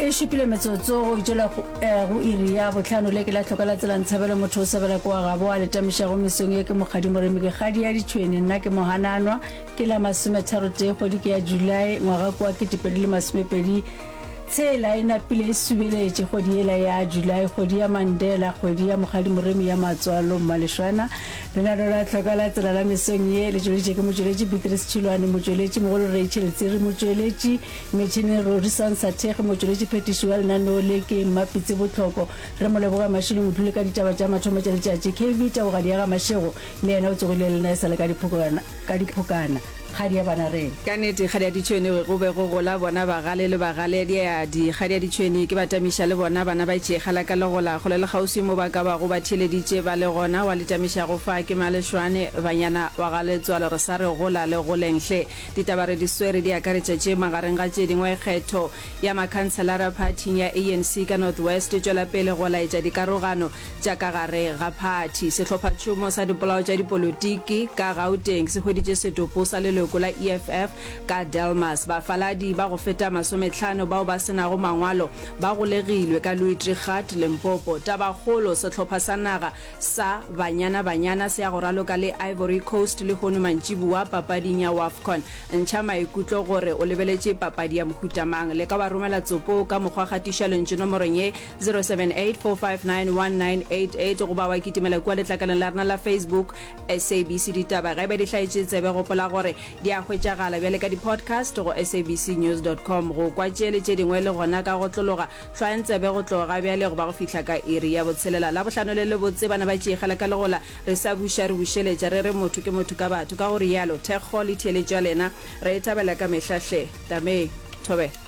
e šupile metsotso go itšela go eh, iri ya botlhano le ke la tlhoka la tselang tshabelo motho o sebela kwa gabo a letamišago mesong ye ke mokgadi moremi ke kgadi ya ditšhwene nna ke mohananwa ke la masometharo tee kgwedi ke ya julae ngwaga kwa ketepedi le masomepedi tshela e napile e subeletše kgwedi yela ya julae kgwedi ya mandela kgwedi ya mokgadi moremi ya matswalo mmalešwana Lenaneo la Tlhoka la Tsela la mesong ye le tšweleditše ke motšweletši Beatrice Tšhilwane, motšweletši mogolo Rachel Tsiri, motšweletši metšhineng Rorison Sathekge, motšweletši phetiši wa lenaneo le ke Mmapitsi Botlhoko. Re mo leboga Mashilo Mothuli ka ditaba tša mathomo tša letšatši. KV Teboga Diaga Mashego le yena o tsogile le nna e sa le ka diphokogana. Ka diphokana, kgadi ya Banareng. Ka nete, kgadi ya Ditšhwene go be go gola bona bagale le bagaleadiadi. Kgadi ya Ditšhwene ke batamiša le bona bana ba tšekga la ka legola kgole le kgauswi mo ba ka bago ba theeleditše ba le gona wa le tamiša go fa ke Malešwane, banyana wa ga Letswalo re sa re gola le goleng hle. Ditaba re di swere di akaretša tše magareng ga tše dingwe kgetho ya makhanselara phathing ya ANC ka North West e tšwela pele go laetša dikarogano tša ka gare ga phathi. Sehlophatšhomo sa dipolao tša dipolotiki ka Gauteng se hweditše setopo sa leloko la EFF ka Delmas. Bafaladi ba go feta masometlhano bao ba se nago mangwalo ba golegilwe ka Louis-Trichardt, Limpopo. Tabakgolo, sehlopha sa naga sa Banyana Banyana se ya go raloka le Ivory Coast lehono mantšiboa papading ya Wafcon. Ntšha maikutlo gore o lebeletše papadi ya mohuta mang. Leka wa romela tsopo ka mokgwa gatiša lentšu nomorong ye. 0784591988 goba wa kitimela kua letlakaleng la rena la Facebook SABC Ditaba. Ge e ba di hlaetše tsebe, gopola gore di a hwetšagala bjale ka di-podcast go sabcnews.com. Go kwa tše le tše dingwe le gona ka go tlologa, hlwayang tsebe go tloga bjale go ba go fihla ka iri ya botshelela. Labohlano le lebotse, bana ba tšeikgela ka legola, re sa buša, re bušeletša, re re motho ke motho ka batho, ka go rialo. Thekgo le theeletšo ya lena re e thabela ka mehla hle. Tamee. Thobela.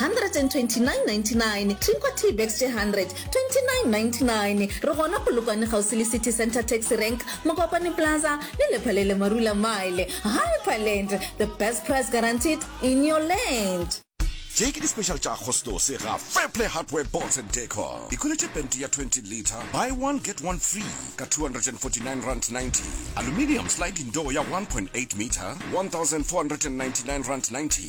129.99 Clinkwa Tea Bags tše 100, 29.99 Re gona Polokwane kgauswi le City Centre Taxi Rank, Mokwakwani Plaza le Lephalele Marula Mile. Hyperland, the best price guaranteed in your land! Tše ke di-special tša Agostose ga Fairplay Hardware Boards and Decor. Ikhweletše pente ya 20 litre, buy one get one free, ka R249.90, aluminium sliding door ya 1.8 metre, R1,499.90,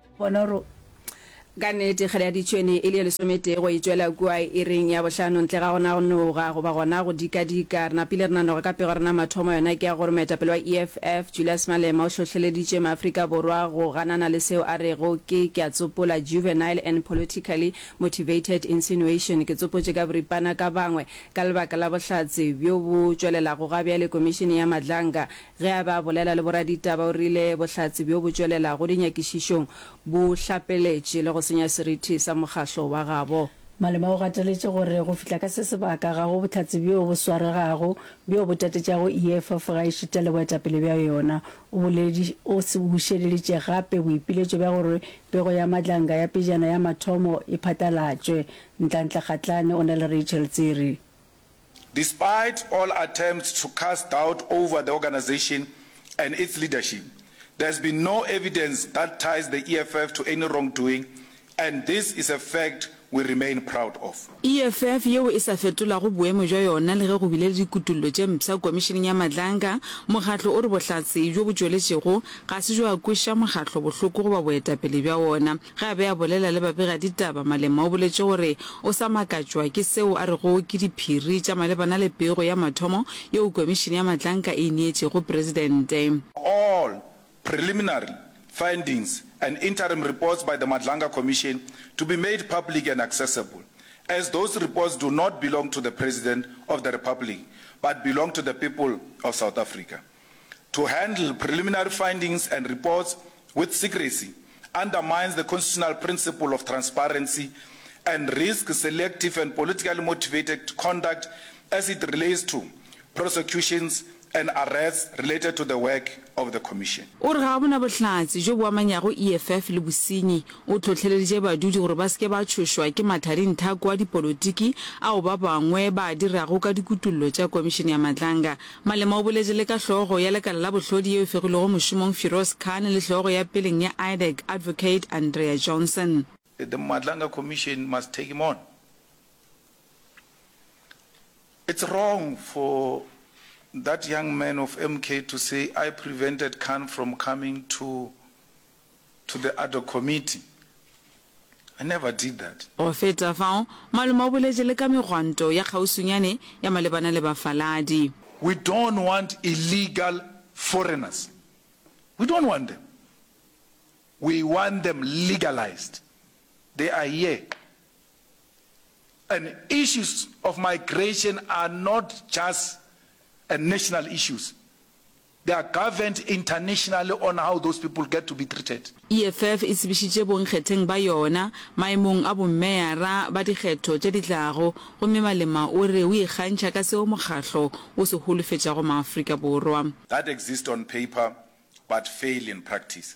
Bona gore ka nnete kgele ya ditšhwene e le ye lesometee go e tšwela kua iring ya bohlano ntle ga gona go noga goba gona go dikadika. Re napile re nanoga ka pego ya rena mathomo, yona ke ya gore moetapele wa EFF, Julius Malema o hlohleleditše Maafrika Borwa go ganana le seo a rego ke, ke a tsopola, juvenile and politically motivated insinuation. Ke tsopotše ka boripana ka bangwe ka lebaka la bohlatse bjo bo tšwelelago gabjale Komišene ya Madlanga Ge a be a bolela le boraditaba, o rile bohlatse bjo bo tšwelelago dinyakišišong bo hlapeletše le go senya seriti sa mokgahlo wa gabo. Malema o gateletše gore go fihla ka se sebaka ga go bohlatse bjo bo swaregago bjo bo tatetšago EFF ga e šitele boetapele bja yona. O boledi, o bušeleditše gape boipiletšo bja gore pego ya Madlanga ya pejana ya mathomo e phatlalatšwe. Ntlantle Kgatlane o na le Rachel Tsiri. Despite all attempts to cast doubt over the organisation and its leadership, there has been no evidence that ties the EFF to any wrongdoing and this is a fact we remain proud of. EFF yeo e sa fetolago boemo bja yona le ge go bile le dikutollo tše mpsha Komišeneng ya Madlanga, mokgatlo o re bohlatse bjo bo tšweletšego ga se bjo a kweša mokgatlo bohloko goba boetapele bja wona. Ge a be a bolela le babegaditaba, Malema o boletše gore o sa makatšwa ke seo a rego ke diphiri tša malebana le pego ya mathomo yeo Komišene ya Matlanka e e neetšego Presidente. All preliminary findings and interim reports by the Madlanga Commission to be made public and accessible, as those reports do not belong to the President of the Republic but belong to the people of South Africa. to handle preliminary findings and reports with secrecy undermines the constitutional principle of transparency and risks selective and politically motivated conduct as it relates to prosecutions and arrests related to the work of the Commission. O re ga a bona bohlatse bjo bo amanyago EFF le bosenyi. O hlohleleditše badudi gore ba se ke ba tšhošwa ke mathadinthako a dipolotiki ao ba bangwe ba a dirago ka dikutollo tša Komišene ya Matlanga. Malema o boletše le ka hlogo ya lekala la bohlodi yeo e fegilwego mošomong Firoz Khan le hlogo ya peleng ya IDEC Advocate Andrea Johnson. The Matlanga Commission must take him on. It's wrong for that young man of MK to say I prevented Khan from coming to to the Adhoc Committee. I never did that. Go feta fao, malome o boletše le ka megwanto ya kgauswinyane ya malebana le bafaladi. We don't want illegal foreigners. We don't want them. We want them legalized. They are here. And issues of migration are not just a national issues. They are governed internationally on how those people get to be treated. EFF e tsebišitše bonkgetheng ba yona maemong a bommeara ba dikgetho tše di tlago gomme Malema o re o ikgantšha ka seo mokgahlo o se holofetšago Maafrika Borwa. that exist on paper but fail in practice.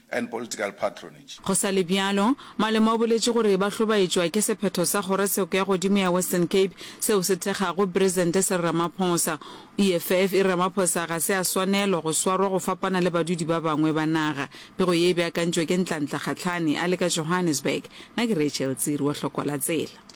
and political patronage. Go sa le bjalo, Malema o boletše gore ba hlobaetšwa ke sephetho sa kgorotsheko ya godimo ya Western Cape seo se thekgago Presente Cyril Ramaphosa. O eff e re Ramaphosa ga se a swanelo go swarwa go fapana le badudi ba bangwe ba naga. Pego ye e beakantšwe ke Ntlantla Kgatlhane a le ka Johannesburg. Na ke Rachel Tsiri wa Hlokola Tsela.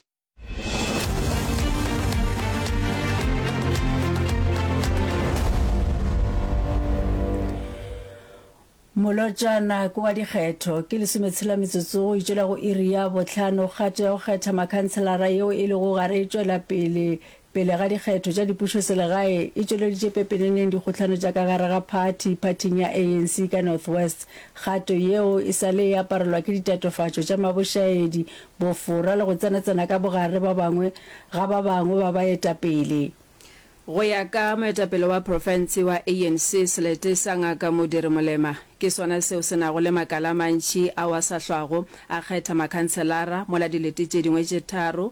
molotšana ke wa dikgetho ke lesometshela metsotso go itšela go iri ya botlhano kgato ya go kgetha makhanselara yeo e lego gare e tšwela pele Pele ga dikgetho tša dipušoselegae, e tšweleditše pepeneneng dikgohlano tša ka gare ga phathi phathing ya ANC ka North West, kgato yeo e sa le e aparelwa ke ditatofatšo tša mabošaedi, bofora le go tsenatsena ka bogare ba bangwe ga ba bangwe ba baetapele. Go ya ka moetapele wa profense wa ANC Selete sa Ngaka Modiri Molema, ke sona seo se nago le makala a mantši ao a sa hlwago a kgetha makhanselara mola dilete tše dingwe tše tharo